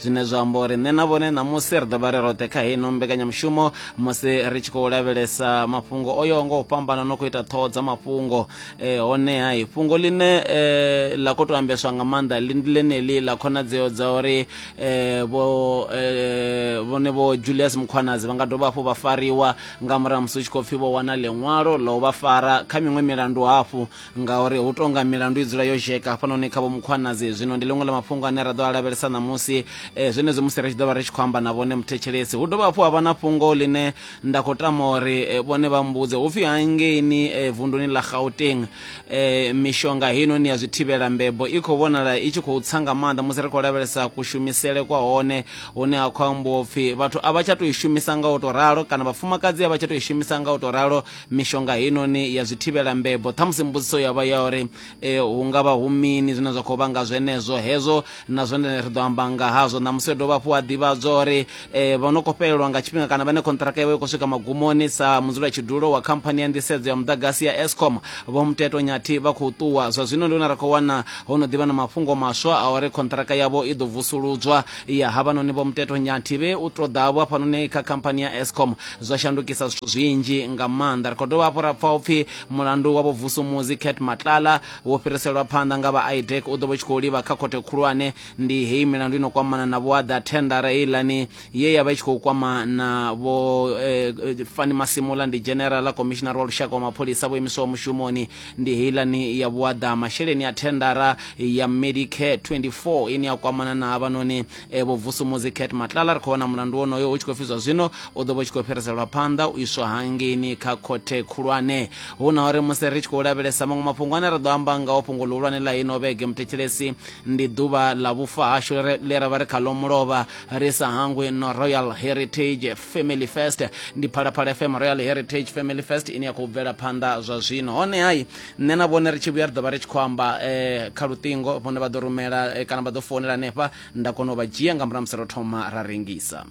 zwine zwa amba uri nṋe na vhone ṋamusi ri ḓo vha ri roṱhe kha heino mbekanyamushumo musi ri tshi khou lavhelesa mafhungo o yaho nga u fhambana no khou ita ṱhoho dza mafhungo eh, honeha i fhungo ḽine eh, ḽa khou tou ambeswa nga maanḓa ḽi ndi ḽeneḽi ḽa khonadzeo dza uri eh, vho eh, vhone vho julius mukhwanadzi vha nga dovha hafhu vha fariwa nga murahu musi u tshi khou pfhi vho wana ḽiṅwalo ḽa u vha fara kha miṅwe milandu hafhu ngauri hu tonga milandu i dzula yo zheka hafhanoni kha vho mukhwanadzi zwino ndi ḽiṅwe ḽa mafhungo ane ra ḓo a lavhelesa ṋamusi um zwenezwi musi ri tshi ḓo vha ri tshi khou amba na vhone muthetshelesi hu dovha hafhu ha vha na fhungo ḽine nda khou tama uri eh, vhone vha mbudze hu pfhi hangeini eh, vunduni ḽa gauteng um mishonga heinoni ya zwi thivhela mbebo i khou vhonala i tshi khou tsa nga maanḓa musi ri khou lavhelesa kushumisele kwa hone hune ha khou ambiwa upfhi vhathu a vha tsha tou i shumisa nga u tou ralo kana vhafumakadzi a vha tsha tou i shumisa nga u tou ralo mishonga heinoni ya zwithivhela mbebo ṱhamusi mbudziso ya vha ya uri e, hu nga vha hu mini zwine zwa khou vhanga zwenezwo hezwo na zwone ri ḓo amba nga hazwo ṋamusi yo dovha hafhu a ḓivhadzwa uri e, vha no khou fhelelwa nga tshifhinga kana vhane khonṱiraka yavho i khou swika magumoni sa mudzula tshidulo wa khamphani ya nḓisedzo ya muḓagasi ya escom vho muteto nyathi vha khou ṱuwa zwa zwino ndi hone ri khou wana ho no ḓivha na mafhungo maswa a uri khonṱiraka yavho i ḓo vusuludzwa ya havhanoni vho muteto nyathi vhe u to ḓa vho hafhanoni kha khamphani ya escom zwa shandukisa zwithu zwinzhi nga maanḓa ri khou dovha hafhu ra pfa upfhi mulandu wa vhobvusumuzi cat matlala wo fhiriselwa phanḓa nga vha idec u ḓo vha tshi khou livha kha khothe khulwane ndi heyi milandu ino kwamana na vhoaḓa thendara heilani ye ya vha i tshi khou kwama na vho eh, eh, fani masimula ndi generala commissioner wa lushaka wa mapholisa vho imiswaho mushumoni ndi heilani ya vhuaḓa masheleni a thendara ya medicare 24 ine ya kwamana na havhanoni e, vho vusumuzi cat matlala ri khou wana mulandu wonoyo u tshi khou pfi zwa zwino u ḓo vha u tshi khou fhiriselwa phanḓa u iswa hangeini kha khothe khulwane hu na uri musi ri tshi khou lavhelesa maṅwe mafhungo ane ra ḓo amba ngaho fhungo ḽihulwane ḽa ino vhege muthetshelesi ndi ḓuvha ḽa vhufa hashu le ra vha ri khaḽo mulovha ri sa hangwi no royal heritage family first ndi phalaphala fm royal heritage family first ine ya khou bvela phanḓa zwa zwino hone hai nṋe na vhone ri tshi vhuya ri ḓo vha ri tshi khou amba eh, kha luṱingo vhone vha ḓo rumela eh, kana vha ḓo founela hanefha nda kona u vha dzhia nga murahu musi ro thoma ra rengisa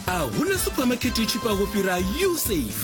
a huna suphamakhethe i tshifhaho fhira usafe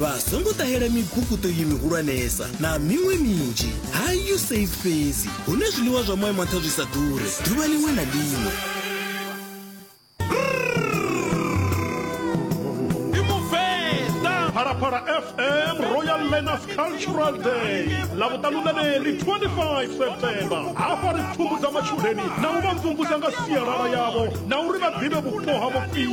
vha songo ṱahela mibukuṱo iyi mihulwanesa na miṅwe minzhi ha usaid fhedzi hune zwiḽiwa zwa moya manṱha zwi sa ḓure ḓuvha liṅwe na liṅwe phalaphala fm royal learners cultural day ḽa vhuṱanulaneli 25 septemba hafha ri pfumbudza matshudeni na u vha mvumvusa nga sialala yavho na uri vha ḓivhe vhupo ha vhupfii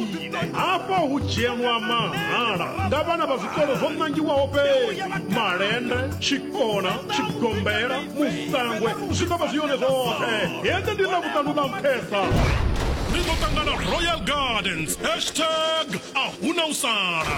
hafha hu dzhielwa mahala nga vhana vha zwikolo zwo ṋangiwaho fhedzi malende tshikona tshigombela musangwe zwi ḓo vha zwi yone zwoṱhe hende ndi na vhuṱanu ḽa nṱhesa ri ḓo ṱangana royal gardens hashtag a hu na u sala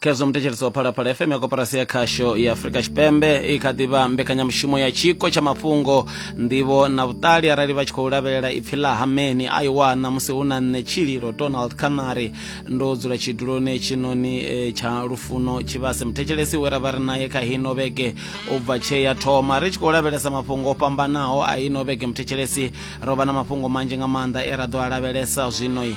khezwo muthetshelesi wa phalaphala fm ya koporasi ya khasho ya afurika tshipembe i kha ḓivha mbekanyamushumo ya tshiko tsha mafhungo nḓivho na vhuṱali arali vha tshi khou lavhelela ipfi ḽa hameni a i wana musi hu na nṋe tshililo donald canary ndo dzula tshiduloni tshinoni eh, tsha lufuno tshivhase muthetshelesi we ra vha ri naye kha hino vhege u bva tshee ya thoma ri tshi khou lavhelesa mafhungo o fhambanaho a ino vhege muthetshelesi ro vha na mafhungo manzhi nga maanḓa e ra ḓo a lavhelesa zwinoi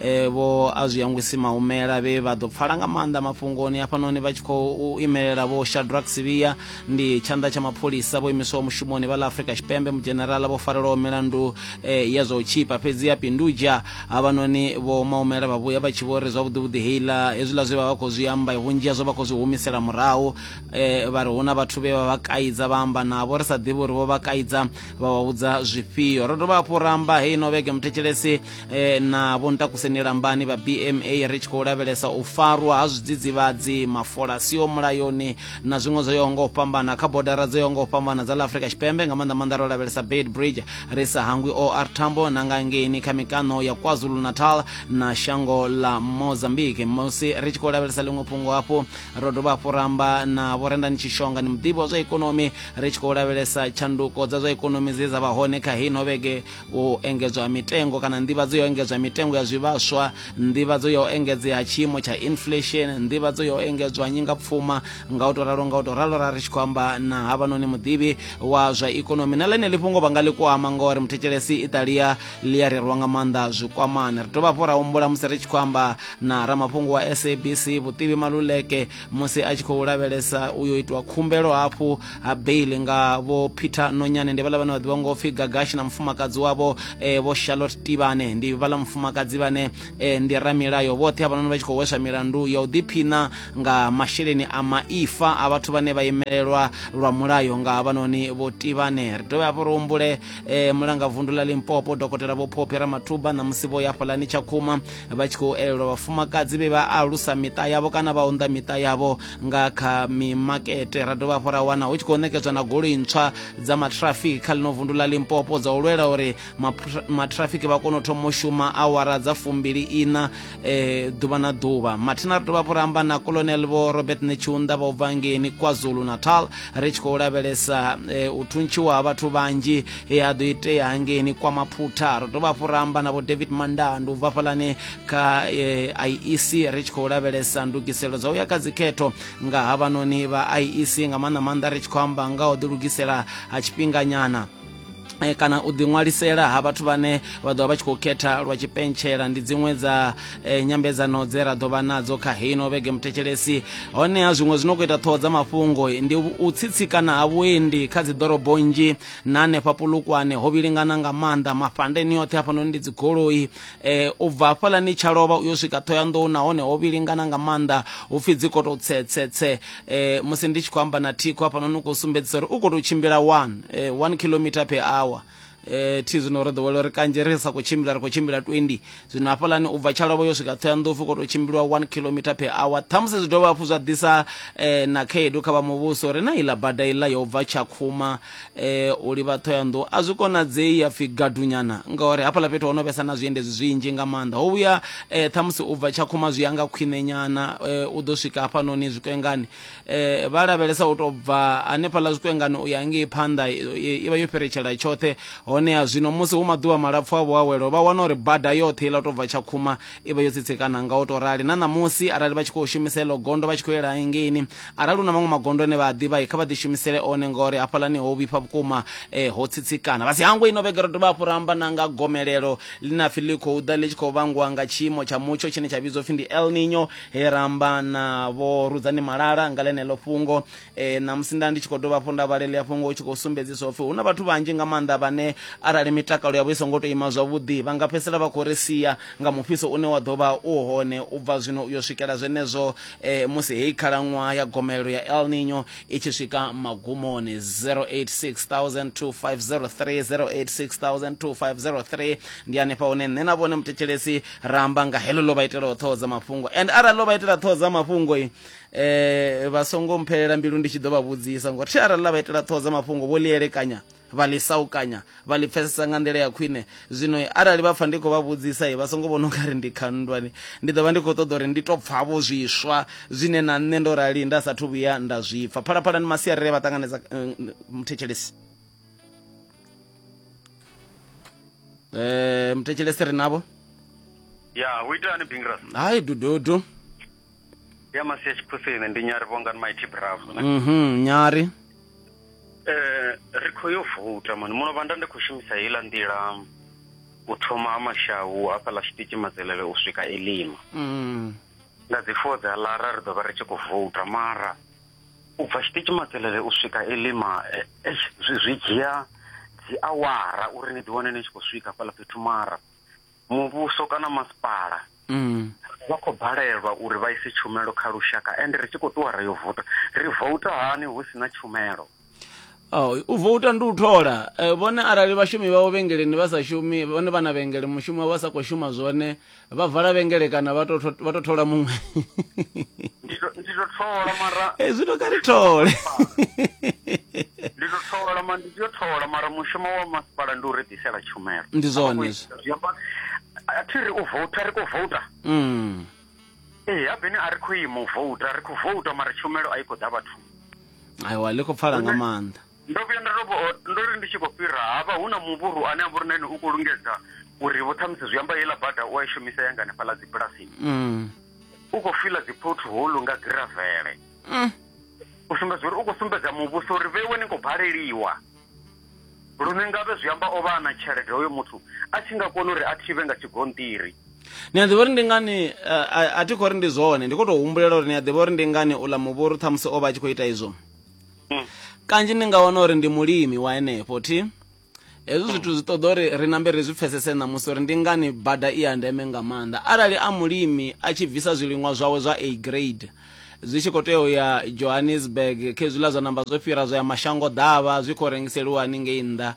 e, vho a zwi yangwisi maumela vhe vha ḓo pfala nga maanḓa mafhungoni hafhanoni vha tshi khou imelela vho shadrack sivia ndi tshanḓa tsha mapholisa vho imiswaho mushumoni vha ḽa afrika tshipembe mudzhenerala vho farelwaho milandu e, ya zwa u tshipa fhedzi ya pindudzha havhanoni vho maumela vha vhuya vha tshi vho ri zwavhuḓivhuḓi heiḽa hezwiḽa zwe vha vha khou zwi amba vhunzhi hazwo vha khou zwi humisela murahu e, vha ri hu na vhathu vhe vha vha kaidza vha amba navho ri sa ḓivhi uri vho vha kaidza vha vha vhudza zwifhio ro dovha hafhu ra amba heino vhege muthetshelesi e, na vho ntakuseni lambani vha bma ri tshi khou lavhelesa u farwa ha zwidzidzivhadzi mafola siho mulayoni na zwiṅwe zwo yaho nga u fhambana kha bodara dzo yaho nga u fhambana dza la afrika tshipembe nga maanḓa maanḓa ro lavhelesa bad bridge ri sa hangwi or tambo na nga ngeini kha mikano ya kwazulu natal na shango la mozambique musi ri tshi khou lavhelesa ḽiṅwe fhungo hafhu ro dovha hafhu ramba na vhorendani tshishonga ni muḓivhi wa zwa ikonomi ri tshi khou lavhelesa tshanduko dza zwa ikonomi dze dza vha hone kha hino vhege u engedzwa mitengo kana nḓivhadzo ya u engedzwa mitengo ya zwivhaswa nḓivhadzo ya u engedzea ha tshiimo tsha inflation nḓivhadzo ya u engedzwa nyingapfuma nga u to ralo nga u to ralo ra ri tshi khou amba na havhanoni muḓivhi wa zwa ikonomi na ḽeneḽi fhungo vha nga ḽi kwama ngori muthetshelesi italia ḽi a rerwa nga maanḓa zwikwamani ri dovha hafhu ra humbula musi ri tshi khou amba na ramafhungo wa sabc vhutivi maluleke musi a tshi khou lavhelesa u yo itiwa khumbelo hafhu ha bail nga vho peter nonyane ndi vhala vhane vha ḓivha ngo pfi gagashi na mufumakadzi wavho eh, vho charlotte tivane ndi vhala mufumakadzi vhane eh, ndi ramilayo vhoṱhe havhanoni vha tshi khou hweswa milandu ya u ḓiphina nga masheleni a maifa a vhathu vhane vha imelelwa lwa mulayo nga havhanoni vho tivane ri dovhe hafho ri humbule eh, mulanga vundu ḽa limpopo dokotela vho phophi ramathuba na musi vho ya fhalani tshakhuma vha tshi khou elelwa vhafumakadzi vhe vha alusa miṱa yavho kana vha unḓa miṱa yavho nga kha mimakete ra dovha hafhu ra wana hu tshi khou nekedzwa na goloi ntswa dza matrafiki kha ḽino vundu ḽa limpopo dza u lwela uri matrafiki vha kone u thoma u shuma awara dza fumbili ina e, ḓuvha na ḓuvha mathina ri dovha hafhu ra amba na colonel vho robert netshiunda vha u bva ngeni kwazulu natal ri tshi khou lavhelesa e, u thuntshiwa ha vhathu vhanzhi he ha ḓo itea hangeni kwa maphutha ri dovha hafhu ra amba na vho david mandandu u bva fhalani kha eh, iec ri tshi khou lavhelesa ndugiselo dza u ya kha dzikhetho nga havhanoni vha iec nga maanḓa maanḓa ri tshi khou amba nga u ḓilugisela ha tshifhinganyana Eh, kana u ḓiṅwalisela ha vhathu vhane vha ḓovha vha tshi khou khetha lwa tshipentshela ndi dziṅwe dza eh, nyambedzano dze ra ḓovha nadzo kha heino vhege muthetshelesi honeha zwiṅwe zwi no khou ita ṱhoho dza mafhungo ndi u tsitsikana ha vhuendi kha dzi ḓorobo nnzhi na hanefha pulukwane ho vhilingana nga maanḓa mafhandeni oṱhe hafhanoni ndi dzigoloi eh, u bva hafhalani tsha lovha u yo swika ṱhoyanḓou nahone ho vhilingana nga maanḓa hu pfi dzi koto tsetsetse eh, musi ndi tshi khou amba na thikho hafhanoni u khou sumbedzisa uri u khou tou tshimbila one eh, one kilometer per hour eh thi zwino ro ḓowela uri kanzhi ri sa khou tshimbila ri khou tshimbila 20 zwino hafhalani u bva tshalovho yo swika thoyanḓou fo koto tshimbilwa 1 kilometer per hour ṱhamusi zwi dovha hafhu zwa ḓisa eh, na khaedu kha vha muvhuso uri na iḽa bada iḽa yo bva tshakhuma eh u livha ṱhoyandou a zwi konadzei ya pfhi gadunyana ngauri hafhaḽa fhethu ho no vhesa na zwiendedzi zwinzhi nga maanḓa ho vhuya eh ṱhamusi u bva tshakhuma zwi ya nga khwiṋenyana eh u ḓo swika hafhanoni zwikwengani eh vha lavhelesa u tou bva hanefhaḽa zwikwengani u ya ngei phanḓa eh, i vha yo fhiretshela tshoṱhe honeha zwino musi hu maḓuvha malapfu a vhuawelo vha wana uri bada yoṱhe iḽa tou bva tshakhuma i vha yo tsitsekana nga u to rali na ṋamusi arali vha tshi khou shumisa iḽo gondo vha tshi khou yela hengeini arali hu na maṅwe magondo ane vha a ḓivha kha vha ḓi shumisele one ngauri hafhalani ho vhifha vhukuma eh, ho tsitsikana vha si hangwe ino vhege ro dovha hafhu ra amba na nga gomelelo ḽine apfi ḽi khou ḓa ḽi tshi khou vhangwa nga tshiimo tsha mutsho tshine tsha vhidzwa upfi ndi el nino he ra amba na vho rudzani malala nga ḽeneḽo fhungo e, ṋamusi nda ndi tshi khou dovha hafhu nda vhalelia fhungo u tshi khou sumbedzisa upfhi hu na vhathu vhanzhi nga maanḓa vhane arali mitakalo yavho i songo tou ima zwavhuḓi vha nga fhedzisela vha khou ri sia nga mufhiso une wa ḓo vha u hone u bva zwino u yo swikela zwenezwo e, musi heyi khalaṅwaha ya gomelelo ya el nino i tshi swika magumoni 0860002503 ndi hanefha hune nṋe na vhone muthetshelesi ra amba nga heḽo ḽo vha itelaho ṱhoho dza mafhungo and arali ḽo vha itela ṱhoho dza mafhungo eh vha songo mphelela mbilu ndi tshi ḓo vha vhudzisa ngori thi arali ḽa vha itela ṱhoho dza mafhungo vho ḽi elekanya vha ḽi saukanya vha ḽi pfesesa nga nḓila ya khwine zwino arali vha pfa ndi khou vha vhudzisa vha songo vhona unga ri ndi khandwani ndi ḓo vha ndi khou ṱoḓa uri ndi to pfa vho zwiswa zwine na nṋe ndo rali nda sathu vhuya nda zwi pfa phalaphala ni masiarele vha ṱanganedza eh, muthetshelesi um eh, muthetshelesi ri navho ya hu itani bingrasi hai dududu ya masesi khusini ndi nyari vhongan mighty bravo mhm nyari eh ri khou yo vuta mani muno vhanda ndi khou shumisa heiḽa nḓila u thoma ha mashahu hafhaḽa tshiṱitshi madzelele u swika elima mhm. nga dzi four dza lara ri ḓo vha ri tshi khou vuta mara u bva tshiṱitshi madzelele u swika elima eh, eh, zwi dzhia dzi awara uri ni ḓiwane ni tshi khou swika hafhaḽa fhethu mara muvhuso kana masipala mm. vha khou balelwa uri vha ise tshumelo kha lushaka ende ri tshi khou ṱuwa ri yo vouta ri vouta hani hu si na tshumelo Oh, u vouta ndi u thola eh, vhone arali vhashumi vhavho vhengeleni vha sa shumi vhone vha na vhengele mushumo wavho vha sa khou shuma zwone vha vala vhengele kana vha to tho- vha to thola muṅwe ndi to- ndi to thola mara Eh, zwi to kha ri thole ndi ḓo thola ma ndi ḓo thola mara mushumo wa masipala ndi u ri ḓisela tshumelo ndi zwone a thi ri u vouta ri khou vouta mm. ee habeni a ri khou ima u vouta ri khou vouta mara tshumelo a i khou ḓa vhathu aiwa ḽi khou pfala nga maanḓa ndo vhuya nda tou ndo ri ndi tshi khou fhira havha hu na muvhuru ane a vhori na ene u khou lungedza uri vho ṱhamusi zwi amba heiḽa bada u a i shumisa yanga hanefhaḽa dzibulasini mm. u khou fila dzi pothole nga giravele mm. u sumbedza uri u khou sumbedza muvhuso uri vheiwe ni khou baleliwa lune ngavhe zwi amba o vha a na tshelede hoyo muthu a tshi nga kona uri a thivhe nga tshigonṱiri ni a ḓivha uri ndi ngani eh, a thi khou ri ndi zwone ndi khou tou humbulela uri ni a ḓivha uri ndi ngani uḽa muvhuru ṱhamusi o vha a tshi khou ita izwo mm. kanzhi ni nga wana uri ndi mulimi wa henefho thi hezwi zwithu zwi ṱoḓa uri ri nambe ri zwi pfesese ṋamusi uri ndi ngani bada i ya ndeme nga maanḓa arali a mulimi a tshi bvisa zwiliṅwa zwawe zwa a grade zwi tshi khou tea u ya johannesburg khezwiḽa zwa namba zwo fhira zwa ya mashango ḓavha zwi khou rengiseliwa haningei nnḓa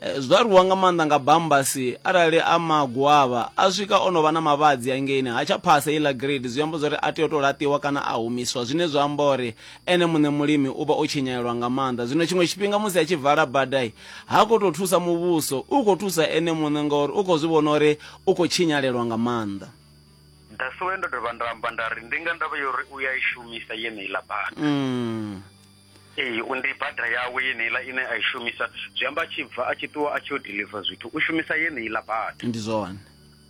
eh, zwi aluwa nga maanḓa nga bambasi arali a magwavha a swika o no vha na mavhadzi angeini ha tsha phasa iḽa grade zwi amba zwa uri a tea u tou laṱiwa kana a humiswa zwine zwa amba uri ene muṋe mulimi u vha o tshinyalelwa nga maanḓa zwino tshiṅwe tshifhinga musi a tshi vala badai ha khou tou thusa muvhuso u khou thusa ene muṋe ngauri u khou zwi vhona uri u khou tshinyalelwa nga maanḓa that's why ndo dovha nda amba nda ri ndi nga ndavha yo uri u ya i shumisa yeneiḽa bada mm. ee ndi bada yawe yeneiḽa ine a i shumisa zwi amba a tshi bva a tshi ṱuwa a tshi yo deliver zwithu u shumisa yeneiḽa bada ndi zwone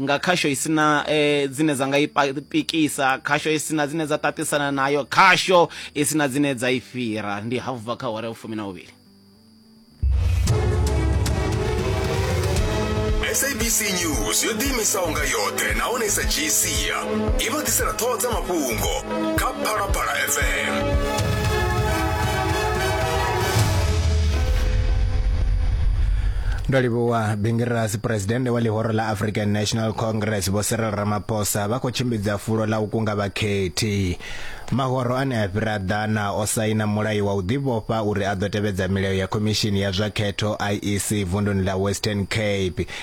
nga khasho i sina eh, dzine dza nga i pikisa khasho i sina dzine dza tatisana nayo khasho i sina dzine dza i fhira ndi hafu bva kha hore u fumi na uvhili sabc news yo ḓiimisaho nga yoṱhe nahone sa gc i vha ḓisela ṱhoho dza mafhungo kha phalaphala fm ndo livhuwa bingirasi phuresidennde wa ḽihoro ḽa african national congress vho cyril ramaphosa vha khou tshimbidza fulo ḽa u kunga vhakhethi mahoro ane a fhira ḓana o saina mulayo wa u ḓivhofha uri a ḓo tevhedza milayo ya khomishini ya zwa khetho iec vunduni ḽa western cape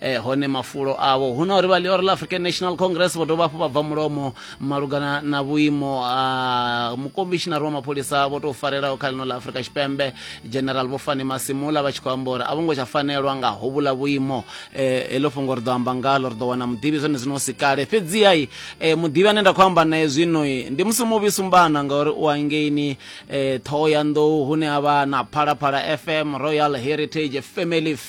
eh, hone mafulo avho hu na uri vha leora la african national congress vho dovha hafhu vha bva mulomo malugana na vhuimo ha mukomishinari wa mapholisa vho tou farelaho kha lino la afrika tshipembe general vho fani masimula vha tshi khou amba uri a vho ngo tsha fanelwa nga hovhula vhuimo eh, heḽo fhungo ri ḓo amba ngalo ri ḓo wana muḓivhi zwone zwino si kale fhedzihai eh, muḓivhi ane nda khou amba naye zwino ndi musi muvhi sumbana ngauri u angeini eh, ṱhoho ya nḓou hune a vha na phalaphala fm royal heritage family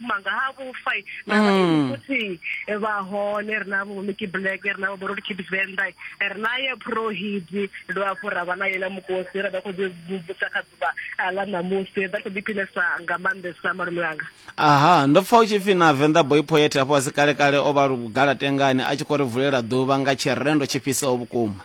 manga ha vhufa na mm. futhi eh, vha hone ri na vho Mickey Black ri na vho Borod Kid Venda eh, ri na ye Pro Hit ndo afho ra vha na yela mukosi ra vha kho ḓi mvumvusa kha ḓuvha ah, ḽa ṋamusi vha kho ḓiphinesa nga maanḓesa malume anga aha ndo pfa u tshi pfi na Venda Boy Poet afho asi kale kale o vha lugala tengani a tshi khou ri vulela ḓuvha nga tshirendo tshifhisaho vhukuma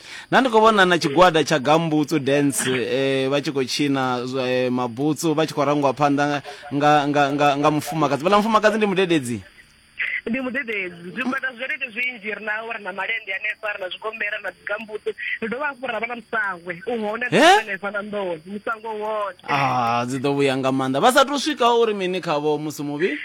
Nda ndi khou vhona na tshigwada tsha Gambutsu Dance eh, vha tshi khou tshina zwa, eh, mabutsu vha tshi khou rangiwa phanḓa nga, nga, nga, nga, nga mufumakadzi vhala mufumakadzi ndi mudededzi ndi mudededzi zwigwada zwerete zwinzhi ri na ri na malende hanefha ri na zwigombela ri na dzigambutsu ri dovha hafhu ra vha na musangwe u hone He? hanefha na nḓowe musangwe u hone ah dzi ḓo vhuya nga maanḓa vha sa tou swika uri mini khavho musi muvhi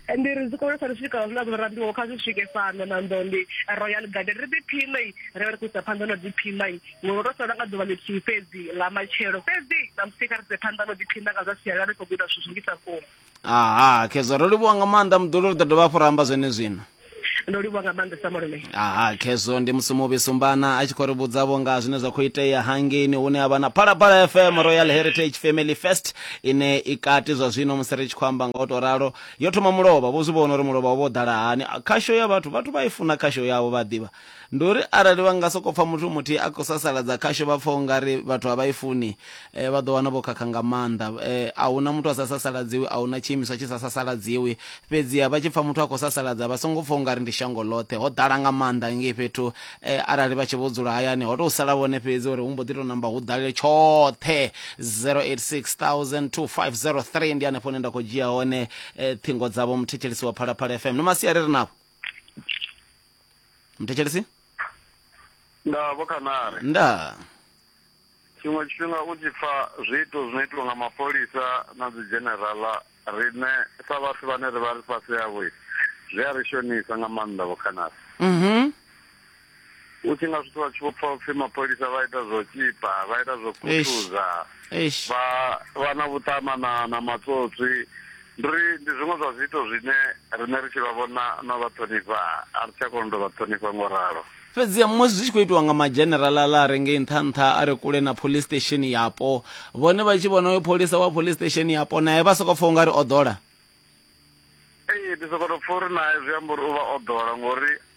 ndi ri zwikolesa ri swika zwiḽa zwo rambiwaho kha zwi swike fhano na nḓondi royal garden ri ḓiphinei ri vha ri khou isa phanḓa no ḓiphinda ngori ro sala nga ḓuvha ḽithihi fhedzi ḽa matshelo fhedzi ṋamusi kha ri se phanḓa no ḓiphinda nga zwa sialala ri khou guda zwithu zwingisa vhukuma aha khezwa ro livhuwa nga maanḓa muḓulu ri ḓo dovha hafhu ra amba zwene zwino ndo livhuwa nga maanḓa sa malume aha khezwo ndi musi muvhi sumbana a tshi khou ri vhudzavho nga zwine zwa khou itea hangeini hune a vha na phalaphala fm royal heritage family fest ine i kati zwa zwino musi ri tshi khou amba nga u tou ralo yo thoma mulovha vho zwi vhona uri mulovha wo vho ḓala hani khasho ya vhathu vhathu vha i funa khasho yavho vha ḓivha Ndi uri arali vha nga sokou pfa muthu muthihi a khou sasaladza khasho vha pfa u nga ri vhathu a vha i funi, vha ḓo wana vho khakha nga maanḓa. A hu na muthu a sa sasaladziwi, a hu na tshiimiswa tshi sa sasaladziwi. Fhedziha vha tshi pfa muthu a khou sasaladza vha songo pfa u nga ri ndi shango ḽoṱhe, ho ḓala nga maanḓa ngei fhethu. Arali vha tshi vho dzula hayani ho tou sala vhone fhedzi uri hu mbo ḓi tou namba hu ḓale tshoṱhe. 0860002503 ndi hanefho hune nda khou dzhia hone ṱhingo dzavho, muthetshelesi wa Phalaphala FM. Ni masiari ri navho. muthetshelesi nda vho khanare nda tshiṅwe tshifhinga u tshi pfa zwiito zwino itiwa nga mapholisa na dzi dzhenerala riṋe sa vhathu vhane ri vha ri fhasi yavho zwi a ri shonisa nga maanḓa vho khanare mhm u tshi nga zwi tshi khou pfa upfhi mapholisa vha ita zwo tshipa vha ita zwo khuthuza vha vha na vhuṱama na na matsotswi Ndi uri ndi zwiṅwe zwa zwiito zwine riṋe ri tshi vha vhona no vha ṱhonifha a ri tsha kona u tou vha ṱhonifha ngo ralo. Fhedziha musi zwi tshi khou itiwa nga madzheneralala a re ngei nṱha-nṱha a re kule na phoḽisi sitesheni yapo, vhone vha tshi vhona uyo pholisa wa phoḽisi sitesheni yapo nae vha sokou pfa u nga ri o ḓola. Ee, ndi sokou tou pfa uri nae zwi amba uri u vha o ḓola ngori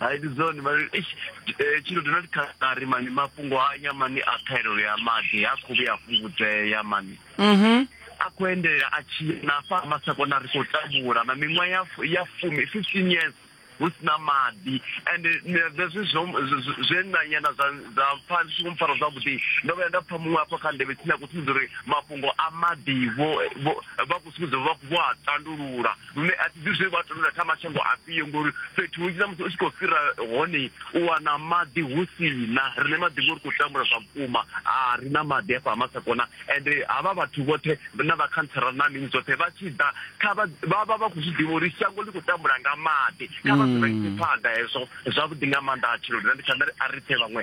hai ndi zwone mali eish, eh, tshino ndo ndi kha a ri mani mafhungo a nya mani a ṱhahelelo ya maḓi ha khou vhuya a fhungudzea mani mhm a khou endelela a tshi ya na afha ha masakona ri khou tambula na miṅwaha ya fu- ya fumi fifteen years hu si na maḓi and hezwi zwe nanyana zwa zwa pfa ndi songo mpfara zwavhuḓi ndo vhuya nda pfa muṅwe afho kha ndevhe tsini a khou sumbedza uri mafhungo a maḓi vho vho- vha khou sumbedza uri vha khou- vho a tandulula lune a thi ḓivhi zwe vha tendula tsha mashango afhio ngori fhethu hunzhi na musi u tshi khou fhira hone u wana maḓi hu si na rine maḓi ngori khou tambula zwa vhukuma a ri na maḓi afha ha masakona ende havha vhathu vhoṱhe na vhakhantsara na mini dzoṱhe vha tshi ḓa kha vha vha vha vha khou zwi ḓivha uri shango ḽi khou tambula nga maḓi kha vha zwi vhaise phanḓa hezwo zwavhuḓi nga maanḓa a tshiloni na ndi tsha nda ri a ri pfhe vhaṅwe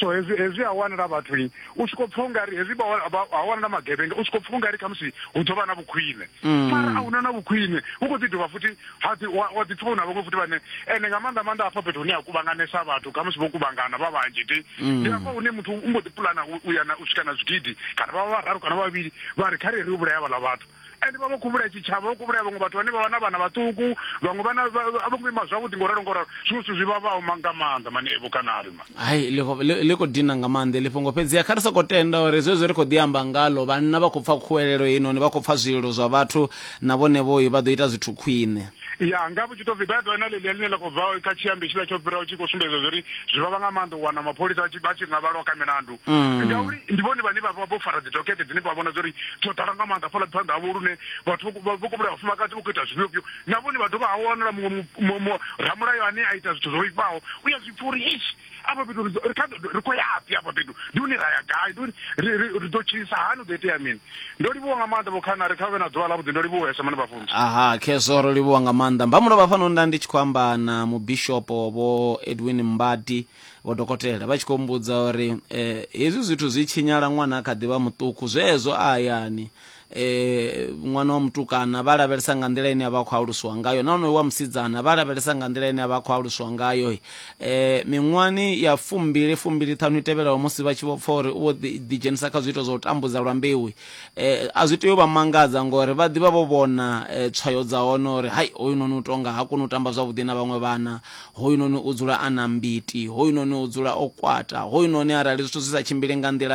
so hezwi hezwi ha wanala vhathu u tshi khou pfa ungari hezwi ha wanala magevhenga u tshi khou pfa ungari khamusi hu ḓo vha na vhukhwine mm. mara a huna na vhukhwine hu khou ḓi dovha futhi wa ḓi pfa u na vhaṅwe futhi vhane ende nga maanḓa maanḓa hafha fhethu hune ha kuvhanganesa vhathu khamusi vho kuvhangana vha vhanzhi ti mm. ndi hafha hune muthu u mbo ḓi pulana u ya na u swika na zwigidi kana vha vha vhararu kana vhavhili vha ri kha re ri u vhulaya vhaḽa vhathu ende vha vho kuvhulaya tshitshavha vho kuvhulaya vhaṅwe vhathu vhane vha vha na vhana vhaṱuku vhaṅwe vhana a vho ngo ima zwavhuḓi ngo ralo ngo ralo zwiṅwe zwithu zwi vhavhaho nga maanḓa mani evo kanari ma hai ḽi khou dina nga maanḓa ḽi fhungo fhedziha kha ri sokou tenda uri zwezwo ri khou ḓi amba ngalo vhanna vha khou pfa khuwelelo heinoni vha khou pfa zwililo zwa vhathu na vhone vhoyi vha ḓo ita zwithu khwine ya nga vhu tshi to pfi baibo na ḽeḽia ḽine ḽa khou bva kha tshiambi tshiḽa tsho fhiraho tshi khou sumbedza zwa uri zwi vhavha nga maanḓa u wana mapholisa vha tshi nga vhalwa kha milandu mm. ngauri ndi vhone vhane vha vha vho fara dzidokete dzine vha vhona zwa uri dzo ḓala nga maanḓa fhala phanḓa havho lune vhathu vho kubula vhafumakadzi vho khou ita zwifhiofhio na vhone vha dovha ha wanala muṅwe ramulayo ane a ita zwithu zwo vhifhaho u ya zwi pfa uri ishi afha fhethu ri khou yafhi afha fhethu ndi hune ra ya gai ndi uri ri ḓo tshilisa hani u ḓo itea mini ndo livhuwa nga maanḓa vhokhana ri kha vhe na ḓuvha ḽavhuḓi ndo livhuwesa mane vhafunzi aha khezwo ro livhuwa nga maanḓa mbamulo vha fano nda ndi tshi khou amba na mubishopo vho edwin mbadi vho dokotela vha tshi khou mbudza uri eh, hezwi zwithu zwi tshinyala ṅwana a kha ḓivha muṱuku zwezwo a hayani e, ṅwana wa mutukana vha lavhelesa nga nḓila ine a vha khou alusiwa ngayo na onoyo wa musidzana vha lavhelesa nga nḓila ine a vha khou alusiwa ngayo um e, miṅwani ya fumbili fumbili ṱhanu i tevhelaho musi vha tshi vho pfa uri u vho ḓidzhenisa kha zwiito zwa u tambudza lwa mbeu um e, a zwi tea u vha mangadza ngori vha ḓivha vho vhona um tswayo dza hone uri hai hoyu noni u tonga ha koni u tamba zwavhuḓi na vhaṅwe vhana hoyu noni u dzula a na mbiti hoyu noni u dzula o kwata hoyu noni arali zwithu zwi sa tshimbili nga nḓila